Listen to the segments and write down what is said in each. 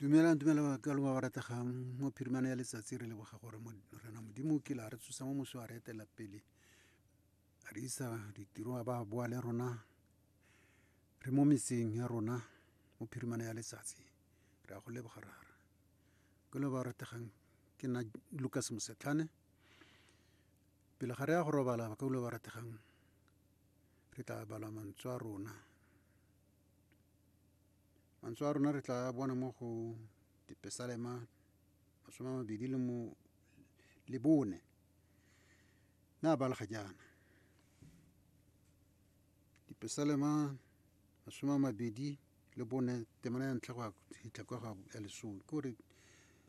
dumelang dumela ka lo ba rategang mo phirimana ya letsatsi re leboga gore rena modimo ke la re tsosa mo moso a re etela pele a re isa ditiro a ba boa le rona re mo metseng ya rona mo phirimana ya letsatsi re a go leboga rara ke lo ba rategang ke nna lucas mosetlhane pele ga re ya go robala ba ka lo ba rategang re tla bala mantswe a rona Mantswe a rona re tla bona mo go dipesalema masome a mabedi le mo le bone na ba lega jaana dipesalema masome a mabedi le bone temana ya ntlha go ya go fitlha kwa ga ya lesome ke gore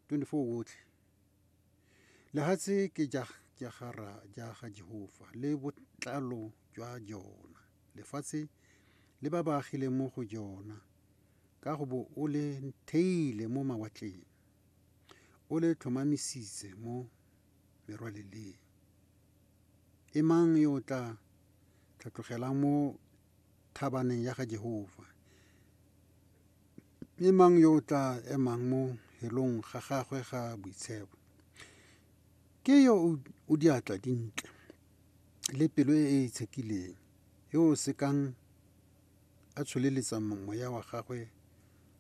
twenty-four otlhe Lehatshe ke ja ja ga ra ja ga Jehofa le botlalo jwa jona. Lefatshe le ba ba agileng mo go jona ka go bo o le theile mo mawatleng. O le tlhomamisitse mo merwaleleng. E mang yo o tla tlhatlogelang mo thabaneng ya ga Jehofa. Mme mang yo o tla emang mo helong ga gagwe ga boitshepo? Ke yo o diatla dintle le pelo e e tshekileng, yo o sekang a tsholeletsa moya wa gagwe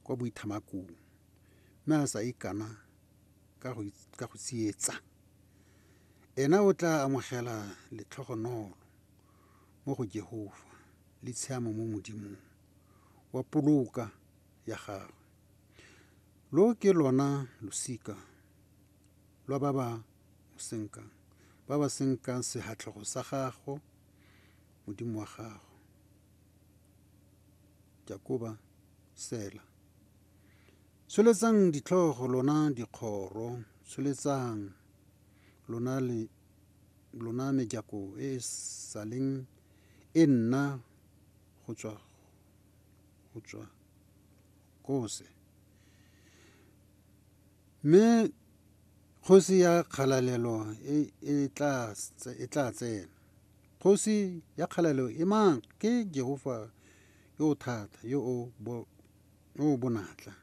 kwa boithamakong, mme a sa ikana ka go tsietsa. Ena o tla amogela letlhogonolo. mo go Jehofa le tshiamo mo Modimong, wa poloka ya gagwe. Lo ke lona losika lwa ba ba mo senkang, ba ba senkang sehatlhogo sa gago, Modimo wa gago. Jakoba, Sela. Tsholetsang ditlhogo lona dikgoro, tsholetsang lona le lona mejako e e saleng e nna go tswa go tswa kose. Mme kgosi ya kgalalelo e e tla e tla tsena. Kgosi ya kgalalelo e mang? Ke Jehofa yo o thata, yo o bo yo o bonatla.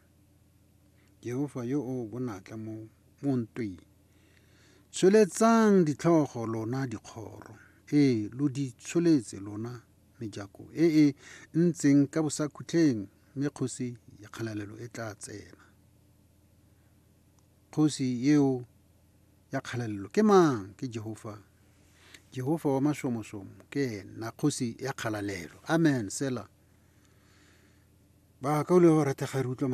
Jehofa yo o bonatla mo mo ntweng. Tsholetsang ditlhogo lona dikgoro, ee, lo di tsholetse lona mejako e e ntseng ka bosakhutleng, mme kgosi ya kgalalelo e tla tsena. Kgosi eo ya kgalalelo ke mang? Ke Jehofa. Jehofa wa mashomosomo ke ena kgosi ya kgalalelo. Amen. Sela. Ba ka o le go ratega re utlwa mantswe.